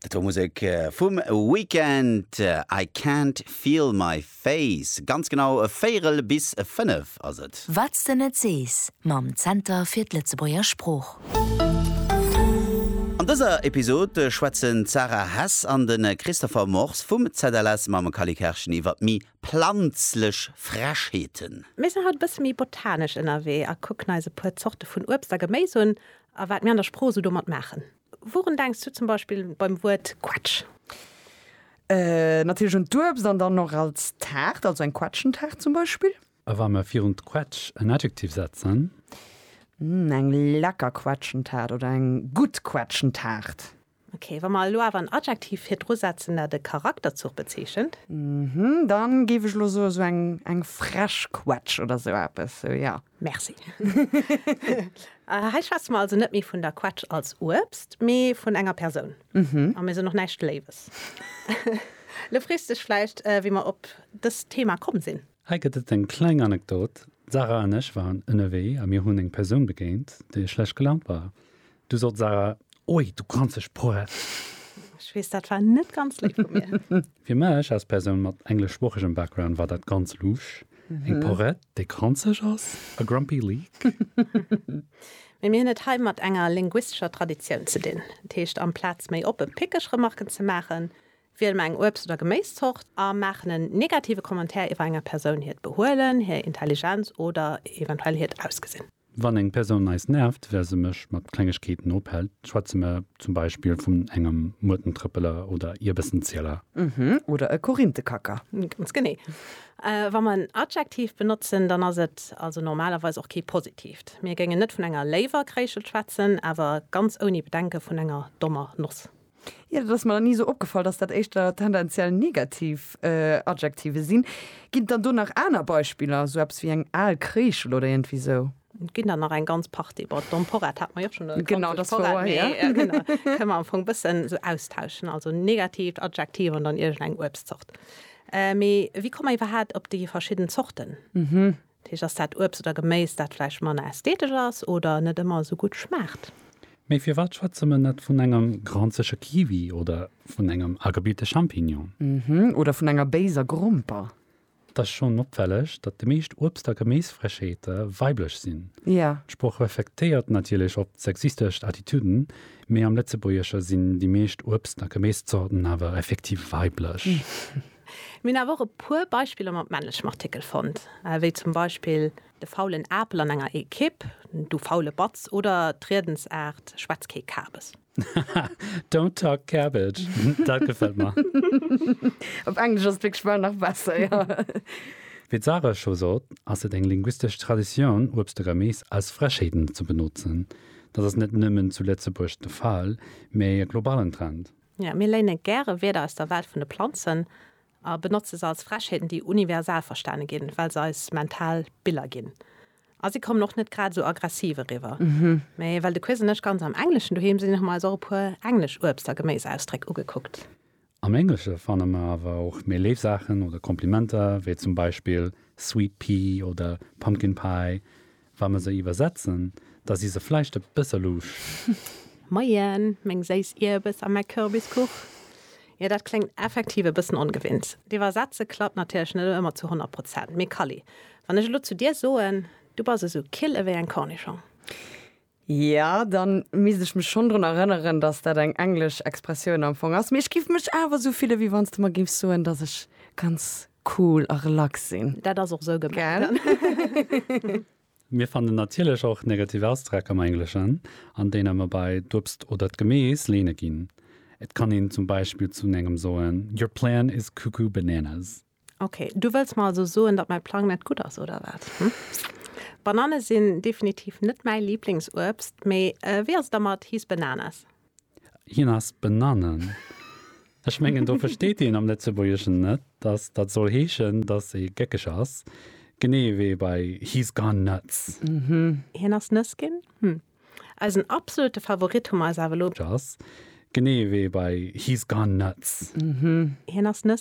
Dat war Musek vum Weekend, I can't feel my face. Ganz genau véierel bis fënnef ass et. Wat s de net sees mam Zenter fir d'Lëtzebuerger Sprooch. An dëser Episod schwätzen d'Sarah Hess an de Christopher Mors vum ZLS mam Kally Kerschen iwwer méi planzlech Frechheeten. Mir sinn haut e bësse méi botanesch ënnerwee a kucken eis e puer Zorte vun Uebst a Geméis un A wat mir an der Sprooch esou domat maachen. Wourun denks du zum Beispill beim Wuert Quetsch? Natierlech un d'Uebst an dann och als Taart, also eng Quetschentaart zum Beispill. A wa mir virun d'Quetsch en Adjektiv setzen? Eng lecker Quetschentaart oder eng gutt Quetschentaart. Ok, wa mer elo awer en Adjektiv virdru setzen, dat e Charakterzuch bezeechent? Mhm, dann géif ech elo soen, esou eng, eng frech Quetsch oder esou eppes, esou, jo. Merci. Hei schwätze mer also net méi vun der Quetsch als Uebst, mee vun enger Persoun. Mhm. A mir soen och näischt Léiwes. Elo frees dech vläicht, wéi mer op dëst Thema komm sinn. Hei gëtt et eng kleng Anekdot, D'Sarah an ech waren ënnerwee a mir hunn eng Persoun begéint, déi schlecht gelaunt war. Du sot Sarah, Oi, du granzeg Sproat! Ech weess, dat war net ganz léif vu mir. Fir mech als Persoun mat engleschsproochegem Background war dat ganz luusch, eng Porett, déi granzeg ass, a grumpy leak. Mee mir hunn et hei mat enger linguistescher Traditioun ze dinn. Dat heescht, amplaz méi oppe pickeg Remarken ze maachen, wiele mer eng Uebst oder Geméiszort a maachen en negative Commentaire iwwer enger Persoun hiert Behuelen, hir Intelligenz oder eventuell hiert Ausgesinn. Wann eng Persoun eis nervt, well se mech mat Klengegkeeten ophält, schwätze mer zum Beispill vun engem Muertentrëppeler oder Ierbessenzieler. Mhm, oder e Korinthekacker. Ganz genee. Wa mer en Adjektiv benotzen, dann ass et also normalerweis och kee positiivt. Mir géingen net vun enger léiwer Kréischelt schwätzen, awer ganz ouni Bedenke vun enger dommer Noss. Jo, dat ass mer nach ni esou opgefall, dass dat éischter tendenziell negativ Adjektive sinn. Ginn et dann do nach aner Beispiller, esou eppes wéi eng al Kreeschel oder iergendwéi esou? Et ginn der nach eng ganz Partie. Bon, d'Emporette hat mer jo schonn erkläert. Genau, dat war ower héi. Genau, kënne mer am Fong e bëssen esou austauschen, also negatiivt Adjektiv an dann iergendeng Uebstzort. Mee wéi komme mer iwwerhaapt op déi verschidden Zorten? Dat heescht, ass dat Uebst oder Geméis, dat vläicht manner ästhetesch ass oder net ëmmer esou gutt schmaacht? Mee firwat schwätze mer net vun engem granzege Kiwi oder vun engem agebilte Champignon? Oder vun enger béiser Gromper? Et ass schonn opfälleg, datt déi meescht Uebst a Geméisfrëscheete weiblech sinn. D'Sprooch reflektéiert natierlech op d'sexistescht Attitüden, mee am Lëtzebuergesche sinn déi meescht Uebst a Geméiszorten awer effektiv weiblech. Mir hunn awer och e puer Beispiller mat männlechem Artikel fonnt, wéi zum Beispill de faulen Apel an enger Ekipp, du faule Batz oder d'Riedensaart schwätz kee Kabes. Haha, don't talk cabbage, dat gefält mer. Op Englesch ass et wierklech bal nach besser, jo. Wéi d'Sarah scho sot, ass et eng linguistesch Traditioun, Uebst a Geméis als Frechheeten ze benotzen. Dat ass net nëmmen zu Lëtzebuerg de Fall, mee e globalen Trend. Jo, mir léine gäre Wierder aus der Welt vun de Planzen a benotze se als Frechheeten, déi universal verstane ginn, well se eis mental Biller ginn. A si kommen och net grad esou aggressiv eriwwer. Mee well de Quiz an ech ganz am Engleschen doheem sinn, hu mer eis och e puer englesch Uebst a Geméisausdréck ugekuckt. Am Englesche fanne mer awer och méi léif Saachen oder Komplimenter, wéi zum Beispill sweet pea oder pumpkin pie, Wa mer se iwwersetzen, da si se vläicht e bësse louche. Moien, meng séiss Ierbes a mäi Kürbiskuch. Jo, dat kléngt effektiv e bëssen ongewinnt. D'Iwwersetze klappt natierlech net ëmmer zu honnert Prozent. Mee Kally, wann ech elo zu dir soen, Du bass esou kill ewéi eng Cornischong. Ja, dann misst ech mech schonn drun erënneren, dass dat eng englesch Expressioun am Fong ass. Mee ech giff mech awer esou fillen, wéi wann s de mer giffs soen, dass ech ganz cool a relax sinn. Dat ass och esou gemengt. Mir fannen natierlech och negativ Ausdreck am Engleschen, an deene mer bei d'Uebst oder d'Gemees leene ginn. Et kann een zum Beispill zu engem soen, Your plan is cuckoo bananas. Ok, du wëlls mer also soen, datt mäi Plang net gutt ass, oder wat? Hm? Banane sinn definitiv net mäi Liblingsuebst, mee wéi ass et da mat His Bananas? Hien ass Bananen. Ech mengen, do versteet een am Lëtzebuergeschen net, datt dat soll heeschen, datt ee gëckeg ass, genee ewéi bei He's gone nuts. Mhm. Hien ass nëss ginn? Hm. Eisen absolute Favorit hu mer eis awer elo. Ass, genee ewéi bei He's gone nuts. Mhm. Hien ass nëss.